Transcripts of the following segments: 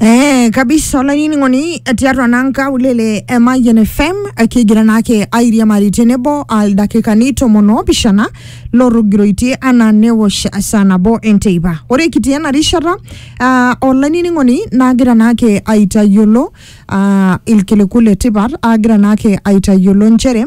Eh, kabisa olainining'oni tiatua naa nkaulele e Mayian FM eh, kigira naake airiamari tenebo aldakikani tomon oopishana lotogiroitie anaa newosh saa nabo enteipa ore kitii ena rishata ah, olainining'oni naagira naake aitayiolo ah, ilkiliku le tipat aagira naake aitayiolo nchere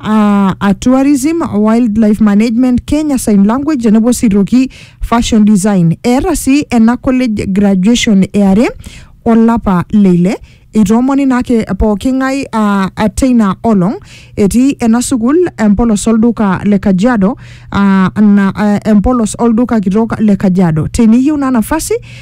uh, a tourism wildlife management kenya sign language tenebo sitoki fashion design eeta sii ena college graduation eare olapa leile itoomoni naake pooking'ae uh, teina olong etii ena sukuul empolos olduka le kajiado uh, na, uh, empolos olduka kitok le kajiado teniyieu naa nafasi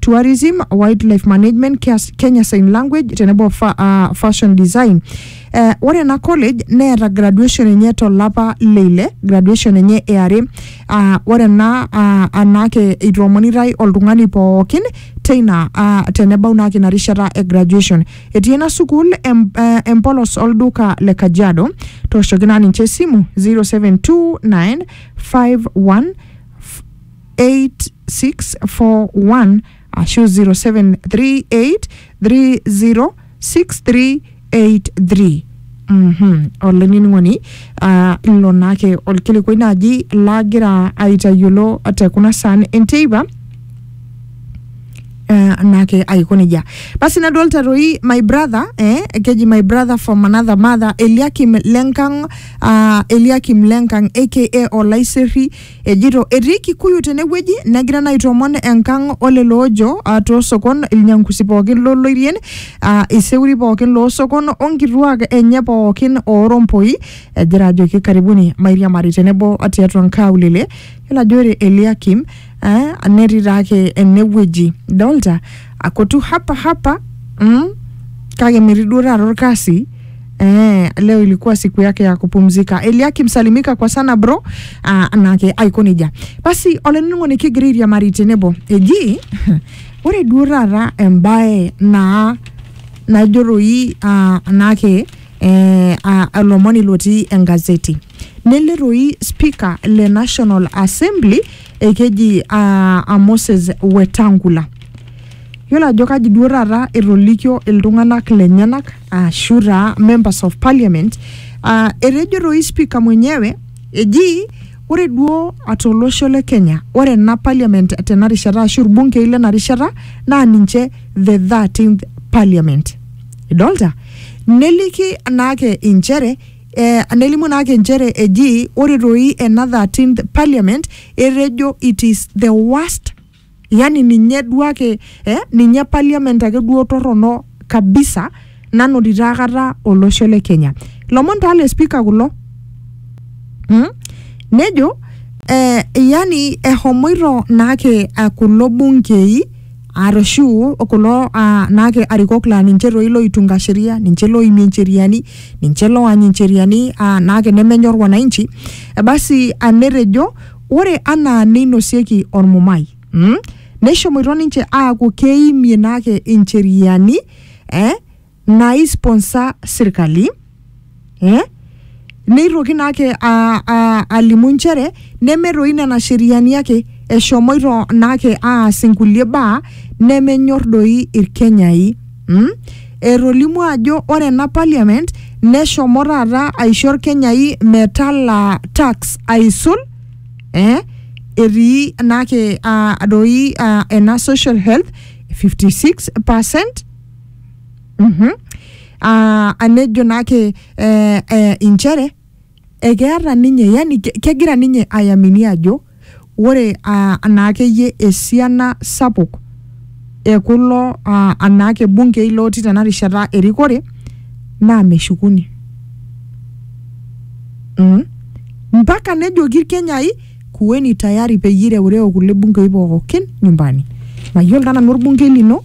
tourism wildlife management Kias- kenya sign language tenebo fa, uh, fashion design uh, ore ena college neeta graduation enye tolapa leile graduation enye eare uh, ore ena uh, anaake itoomonitai oltung'ani pookin teina uh, tenebau naake ina rishata e graduation etii ena sukuul em, uh, empolos olduka le kajiado tooshoki naa ninche esimu 0729 51 07863384641 ashu 0738306383 Mhm. olainining'oni ah, ilo naake olkilikuai naaji lagira aitayiolo te kuna saan enteipa eh, naake aiko nejia basi nadolta toi my brother eh, keji my brother from another mother eliakim lenkang uh, eliakim lenkang aka olaiserri Ejito etii Kikuyu tenewueji negira naa aitoomon enkang olelo oojo ah, toosokon ilnyangusi pookin loloirien ah, iseuri pookin loosokon onkituak enye pookin oorompoi egira ajoki karibuni mairiamari tenebo tiatua nkaulele yiolo ajo ore Eliakim eh, netii taake enewueji idolta akotu hapa hapa mm, kake metii duo taata orkasi Eh, leo ilikuwa siku yake ya kupumzika eliakim salimika kwa sana bro ah, nake aikonija basi oleningo nikigiriria marite nebo eji ore duo taata embae naa najoroi ah, nake eh, ah, olomoni lotii engazeti neleroi speaker le national assembly ekeji ah, ah, moses wetangula yiolo ajo kaji duo taata etolikio iltung'anak lenyenak ashu taa members of parliament uh, etejo toi spika mwenyewe eji ore duo atolosho le kenya ore ena parliament tena rishata ashu irbunkei lena rishata naa ninche the 13th parliament idolta neliki naake inchere eh, nelimu naake inchere eji ore toi ena 13th parliament etejo it is the worst Yani ninye duo ake eh, ninye parliament ake duo torrono kabisa nanotito akata olosho le Kenya. Lomon taa le speaker kulo. Mm? Nejo eh, yani ehomoito naake ah, kulo bunkei arashu kulo ah, naake arikok laa ninche toi loitunga sheria, ninche loimie ncheriani, ninche loany ncheriani ah, naake nemenyor wananchi. Eh, basi ah, netejo Ore anaa neinosieki olmumai, neishomoito ninche aaku keimie naake incheriani naaisponsor sirkali. Neitoki naake alimu nchere neme doi nena sheriani ake, eshomoito naake aas inkulie baa nemenyor doi Ilkenyai. Mm? Etolimuo ajo ore ena parliament neshomo taata aisho Irkenyai metalaa tax aisul eh, etii naake ah, doi ah, ena social health 56 percent Mhm. Ah, anejo naake eh, eh, inchere ekeeta ninye yani kegira ninye ayamini ajo ore anaakeyie esiana sapuk ekulo anaake bunkei lotii tena rishata erikore naa meshukuni mm. mpaka nejoki irkenyai kuweni tayari peyie ireureo kulie bunkei pookin nyumbani mayiolo taa nanu orbunkei lino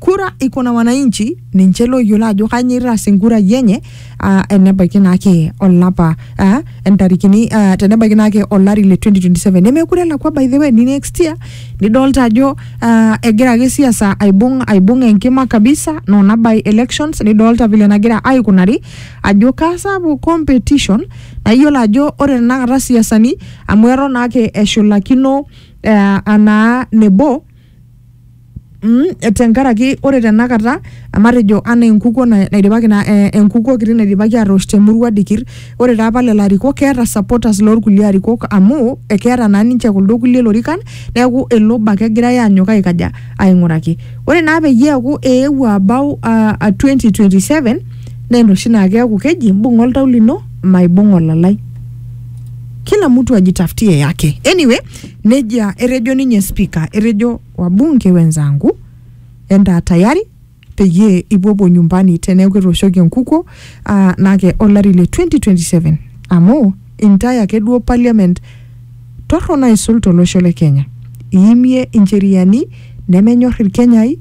kura iko na wananchi ninche looyiolo ajo kanyio itaas enkura yenye ah, enebaiki naake olapa ah, entarikini ah, tenebaiki naake olari le 2027 nemekure elakwa by the way ni next year nidolta ajo ah, egira ake siasa aibung aibung enkima kabisa nona by elections nidolta vile nagira aikunari ajo kasapuk competition nayiolo ajo ore tenakata siasani amu eton naake eshulakino eh, anaa nebo Mm, tenkaraki ore tenakata matejo anaa enkukuo na- naidipaki na eh, enkukuo kiti naidipaki atoosh temurua dikir ore taa pala ilarikok keeta supporters lorkulie arikok amu ekeeta naa ninche kuldo kulie lorikan neeku ele obo ake egirae anyok aikaja aing'uraki ore naa peyie eeku eewuo abau uh, 2027 naa enoshi naa keeku keji imbung'a oltau lino maibung'a olalai kila mtu ajitafutie yake anyway Nejia etejo ninye spika, etejo wabunge wenzangu entaa tayari peyie ipuopuo nyumbani teneeku ketooshoki enkukuo ah, nake olari le 2027 amu intae ake duo parliament torrono aisul tolosho le Kenya. Iimie incheriani nemenyor Ilkenyai,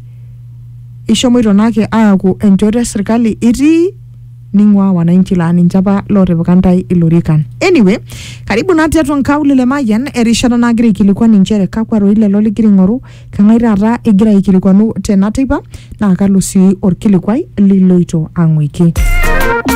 ishomoito nake aaku enchoto e sirkali itii ning'ua wananchi laa ninche apa lootipika ntae ilorikan. Anyway, karibu naa tiatua nkaulele e Mayian erishata nagira aikilikuan inchere kakwa roi lelo ligira aing'oru, keng'ae taata igira aikilikuanu tena teipa naa kalo sii olkilikuai liloito ang'uiki.